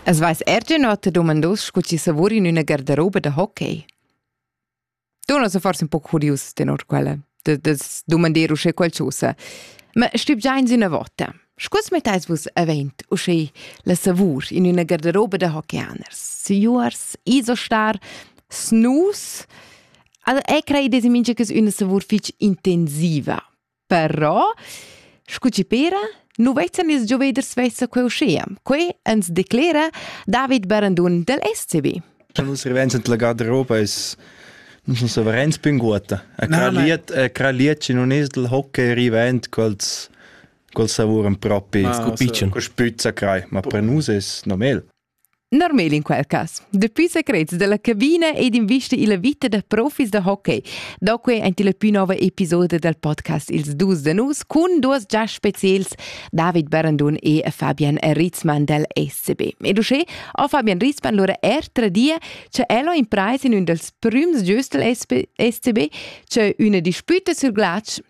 Es vais ergin ota domandos scu chi savur in üna gardaroba da hockey. Tu non so forse un po' curius tenor quella, de, de domander uschè qualchosa. Ma stüb già in üna vota. Scus mettais vus avent uschè la savur in üna gardaroba da hockeyaners, siuars, isostar, snus, Al e crei desi mincha cas üna savur fich intensiva. Però, scu chi pera, nu vezan ils gioveders svessa quai uschea. Quai ans declera David Barandun dal SCB. La nostra vivenza della garderoba es non sono sovereins più in guota. A Kraliet, a Kraliet non es del hockey rivent quels quels savuran propi scu piccion, co spüzza crai, ma per nus es normal. Normal in quel cas. Dapi secrets dalla cabina ed invista illa vita da profis da hockey. Da quei ein la più nova episoda del podcast Ils dus da nus cun duas già specials David Barandun e Fabian Ritzmann del SCB. E uschè ha Fabian Ritzmann lura er tradia che el ha impreis in ün dels prüms giüstel SCB, che üna disputa sur glatsch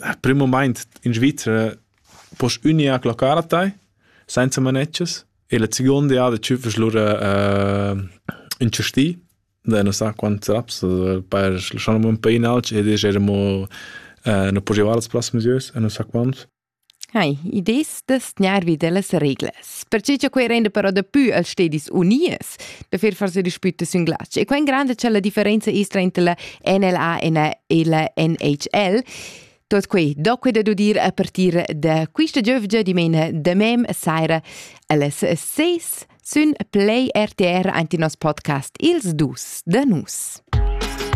Al prim mumaint in Svizra poss unia clocar a tai senza manetschas e la seconda jada tschüffas lura ün chastì da non sa quants raps per schlaschar amo ün pè in alch ed eir amo nu po giovar las plass mesüas e non sa quants. Hai, idées da sgnar vi dellas reglas. Perche cha quei renda però dapü als stedis unies da fer forsa dispüta sün glatsch. E quen granda cha la differenza es trainter la NLA e la, e la NHL, tot quei do quei da dudir a partir da quista giövgia dimena da mem saira allas 6 sün Play RTR ante nos podcast Ils dus da nus.